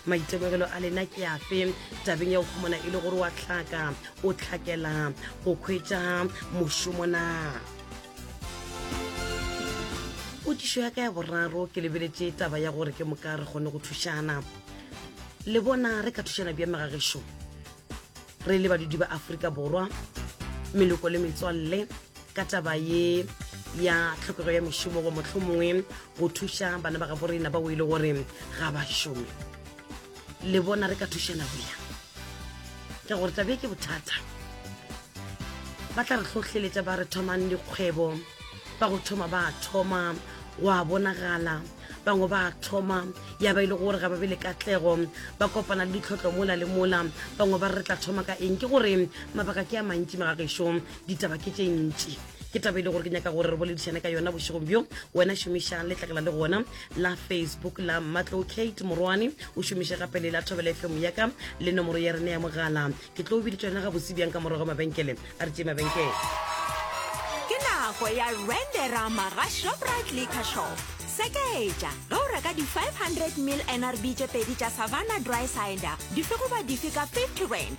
Maitemogelo a lena ke afe tabeng ya go humana e le gore wa hlaka o hlakela go khwetša mošomo na? Potšišo ya ka ya boraro ke lebeletše taba ya gore ke moka re kgone go thušana. Le bona re ka thušana bja megagešo re le badudi ba Afrika Borwa, meloko le metswalle. ka taba ye ya tlhokego ya mešomo go motlho mongwe go thuša bana ba gabo rena ba o e le gore ga ba šome le bona re ka thušana boya ka gore tabe ke bothata ba tla re tlhohleletša ba re thomang dikgwebo ba go thoma ba thoma wa bonagala bangwe ba thoma ya ba e le gore ga ba be le katlego ba kopana le ditlhotlho mola le mola bangwe ba re tla thoma ka eng ke gore mabaka ke a mantši magagešong ditaba ke tše ntši ke taba e le gore ke nyaka gore re boledišane ka yona bošegong bjo wena šomišang letlakela le gona la facebook la matlo kate morwane o šomiše gape le la thobela fm yaka le nomoro ya rena ya mogala ke tlo o biditša yona ga bose bjang ka morago mabenkele a re tše mabenkele ke nako ya renderama ga shoprite liquor shop sekaetša ge o reka di-500 mil nrb tše pedi tša savannah dry cider dife goba dife ka 50 rand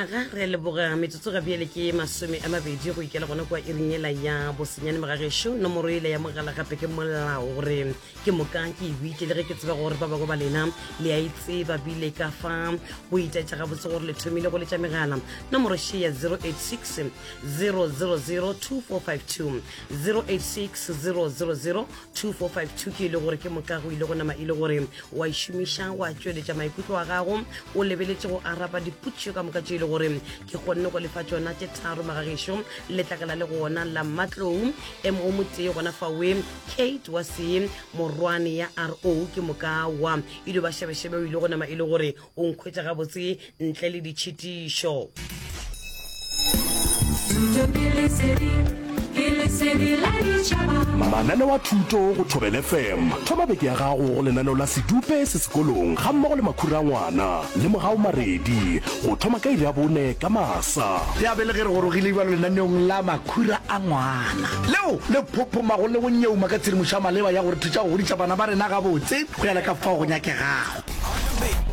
aga re leboga metsotso ga bjele ke masome a mabedi go ikela gona kwa iring ela ya bosenyane mogagešu nomoro ele ya mogala gape ke molao gore ke moka ke e buitse le ge ke tseba gore ba bangwe ba lena le a e tseba bile ka fa go itaetsa gabotse gore le thomile go letša megala nomoro she ya 086 000 2452 086 000 2452 ke ile gore ke moka go ile go nama ile gore wa išomiša wa tšweletša maikutlo wa gago o lebeletše go araba diputšo ka moka tše ile gore ke kgonne go lefa tšona tše tharo magagešo letlakala le gona la matlou em o motee gona fawe kate wa se morwane ya ro ke moka wa ile ba šebešebe o ile go nama ile gore o nkhwetša gabotse ntle le ditšhitišo mananeo a thuto go thobele fm thoma beke ya gago go lenaneo la sedupe se sekolong ga mmogo le makhura ngwana le mogao maredi go thoma ka iri ya bone ka masa ya bele ge re gorogile ibalo lenaneong la makhura a ngwana leo le phophomago le go nyeuma ka tshedimošo ya maleba ya gore thuša go godisa bana ba rena gabotse go ya le ka fao go nyakegago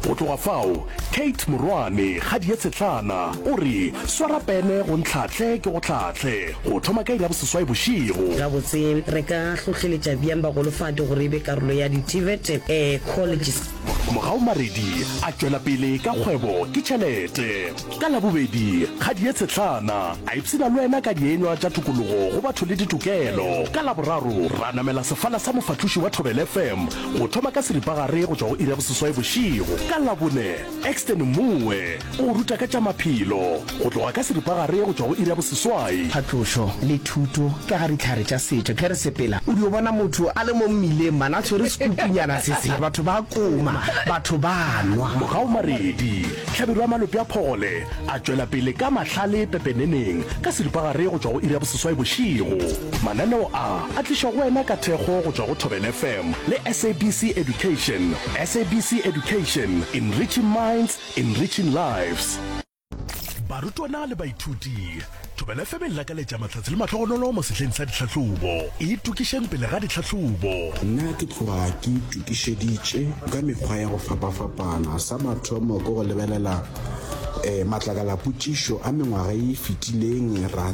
Go tloga fao, Kate morwane Kgadie Tshetlana o re, Swara pene go ntlhahle ke go hlahle, go thoma ka iri ya boseswai bošego. Gabotse, re ka hlohleletša bjang bagolofadi gore e be karolo ya di-TVET? Ee, Colleges. Mogau Maredi a tšwela pele ka kgwebo ke tšhelete. Ka Labobedi, Kgadie Tshetlana a ipshina le wena ka dienywa tša tokologo go batho le ditokelo. Ka Laboraro, ra namela sefala sa mofahloši wa Thobela FM, Go thoma ka seripagare go tšwa go iri ya boseswai bošego ka Labone, Exton Moe o go ruta ka tša maphelo go tloga ka seripagare go tšwa go iri ya boseswai. Phatlošo le thuto ka ga dihlare tša setšo. Ge re sepela, o dio bona motho a le mo mmileng man a tshwere sekupunyana se se, batho ba koma, batho ba nwa. Mogaomaredi, Hlabirwa ya malope a phogole, a tšwela pele ka mahlale pepeneneng ka seripagare go tšwa go iri ya boseswai bošego. Mananeo a a tlišwa go wena ka thekgo go tšwa go Thobela FM le SABC Education. SABC Education, enriching minds, enriching lives. Barutwana le baithuti, Thobela FM e le lakaletša mahlatse le mahlogonolo mo sehleng sa dihlahlobo. Itokišeng pele ga dihlahlobo. Nna ke tloga ke itokišeditše ka mekgwa ya go fapafapana. Sa mathomo ke go lebelela matlakalapotšišo a mengwaga e e fetileng, ra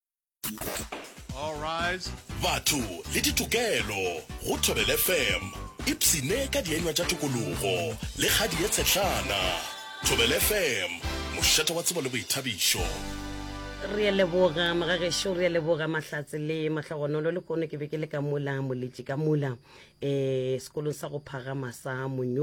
batho le ditokelo go thobele fm ipsene ka dienywa tša tokologo le kgadi ye tshetlana thobele fm mošate wa tsebo le boithabišo re a leboga mogagešu re a leboga mahlatse le mahlogonolo le kono ke be ke le ka mola moletši ka mola um sekolong sa go phagama sa monyo